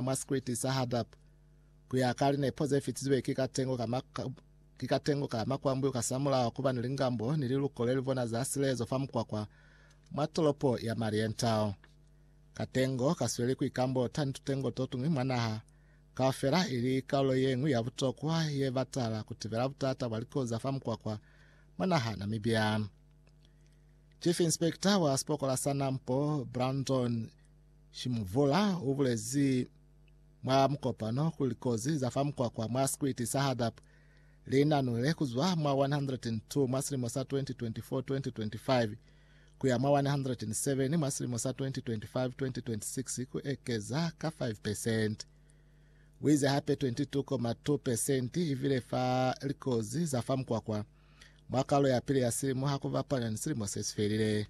mwa sikriti sa Hadab, ku ya ka linepo ze fitizwe ki katengo ka ki katengo ka makwambu ka samulaho kuba ni lingambo ni liluko le livona za silezo fa mukwakwa mwa tolopo ya Marienthal. Katengo ka sweli ku ikambota ni tutengo to tuñwi mwa naha kaufela ili kaulo ye ñwi ya butokwa ye batala ku tibela butata bwa likoza fa mukwakwa mwa naha Namibia. Chief Inspector wa sipokola sa Nampo, Brandon Shimuvula u bulezi mwa mukopano kuli likozi za fa mukwakwa mwa sikwiti sa Hadap li nanulile ku zwa mwa 102 mwa silimo sa 2024-2025 ku ya mwa 107 mwa silimo sa 2025-2026 ku ekeza ka 5 pesenti. U ize hape 22,2 pesenti i vile fa likozi za fa mukwakwa mwa kalo ya pili ya silimo ha ku bapanya ni silimo se si felile.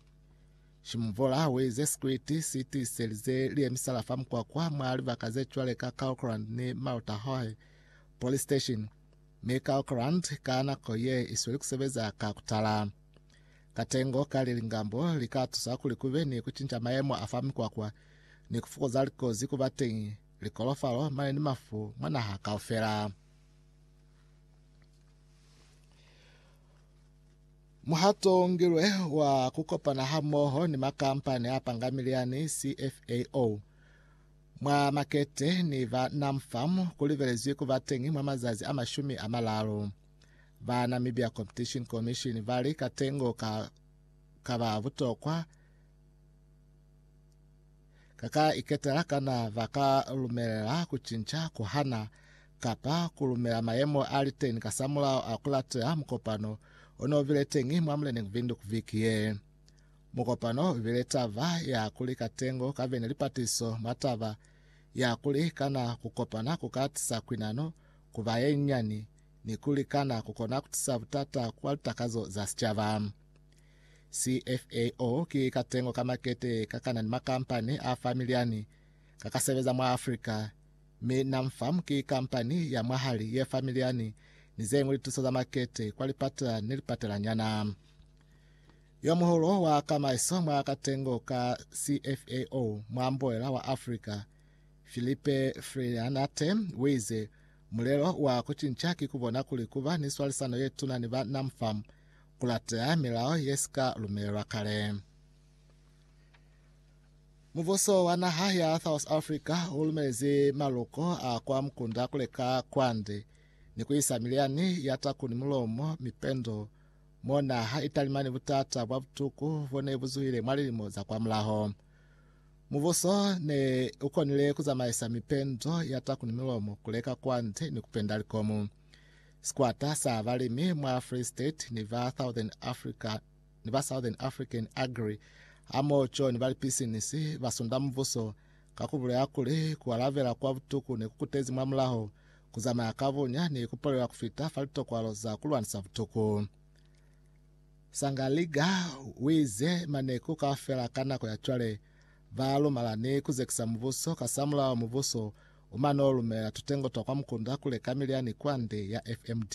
Shimvola wi ze sikriti si tiiselize liye misala fa mukwakwa mwa libaka ze cwale ka Kaohkrand ni Mautahohe Police Station, mi Kaohkrand ka nako ye isweli kusebeza ka kutala. Katengo ka lilingambo li ka tusa kuli kube ni kucinca mayemo a fa mikwakwa ni kufukuza likozi kuba teñi, likolofalo, mali ni mafu mwa naha kaufela. Muhato o ngilwe wa ku kopana hamoho ni makampani a pangamili yani CFAO mwa makete ni ba NamFarm ku libelezwi ku ba teñi mwa mazazi a mashumi a malalu. Ba Namibia Competition Commission ba li katengo ka ka ba butokwa ka ka iketela kana ba ka lumelela ku cinca ku hana kapa ku lumela mayemo a li teñi kasamulaho a ku lateha mukopano o n'o bile teñi mwa muleneñi Windhoek viki ye. Mukopano u bile taba ya kuli katengo ka be ni lipatiso mwa taba ya kuli kana ku kopana ku ka tisa kwinano ku ba ye nyani ni kuli kana ku kona ku tisa butata kwa litakazo za sicaba. CFAO ki katengo ka makete ka kana ni makampani a fa miliani ka ka sebeza mwa Afrika, Mi Namfam ki kampani ya mwahali ye fa milyani ni zeñwi lituso za makete kwa lipatela ni lipatelanyana. Yomuhulu wa kamaiso mwa katengo ka CFAO mwa mboela wa Africa, Philippe Frianate, uize, Mulelo wa kucinca ki kubona kuli kuba ni swalisano yetuna ni ba Namfam, kulateha milao yesika lumelelwa kale. Mubuso wa naha ya South Africa u lumezi maluko a kwa mukunda ku leka kwande ni ku isa milyani ya taku ni mulomo mipendo mo naha i talima ni butata bwa butuku bo ne bu zuhile mwa lilimo za kwa mulaho. Mubuso ne u konile ku zamaisa mipendo ya taku ni mulomo ku leka kwande ni ku penda likomu. Sikwata sa balimi mwa Free State ni ba Southern Africa ni ba Southern African Agri hamoho co ni ba lipisinisi ba sunda mubuso ka ku bulela kuli ku alabela kwa butuku ne ku kutezi mwa mulaho, ku zamaya ka bunya ni ku palela ku fita fa litokwalo za ku lwanisa butuku. Sangaliga wiize maneku kaufela ka nako ya cwale ba lumala ni ku zekisa mubuso, kasamulaho mubuso u mano lumela tutengo twa kwa mukunda ku leka milyani kwande ya FMD.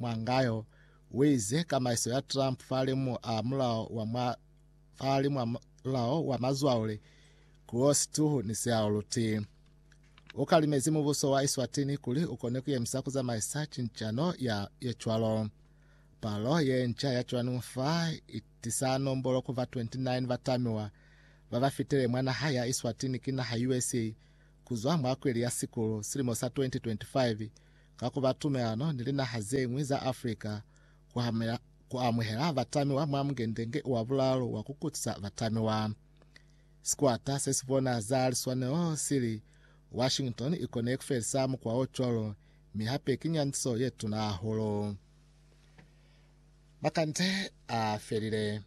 Mwangayo uize kamaiso ya Trump fahali mwa mulao wa mwa fahali mwa mulao wa mazwaule kuo situhu ni seaoluti. Ukalimezi mubuso wa Eswatini kuli ukone kuyemisa kuzamaisa cincano ya yecwalo. Palo yenca ya cwanungu fa itisa nombolo kuva 29 batamiwa babafitele mwa naha ya Eswatini ki naha USA kuzwa mwa kweli ya sikulu silimo sa 2025 ka ku ba tumelano ni linaha ze ñwi za Afrika ku hamela ku amuhela batamiwa mwa Mungende-nge wa Bulaalu wa ku Kutisa Batamiwa. Sikwata se si bona za liswanelo si li, Washington i kone ku felisa mukwa o cwalo, mi hape ki nyandiso ye tuna hahulu. Makande a felile.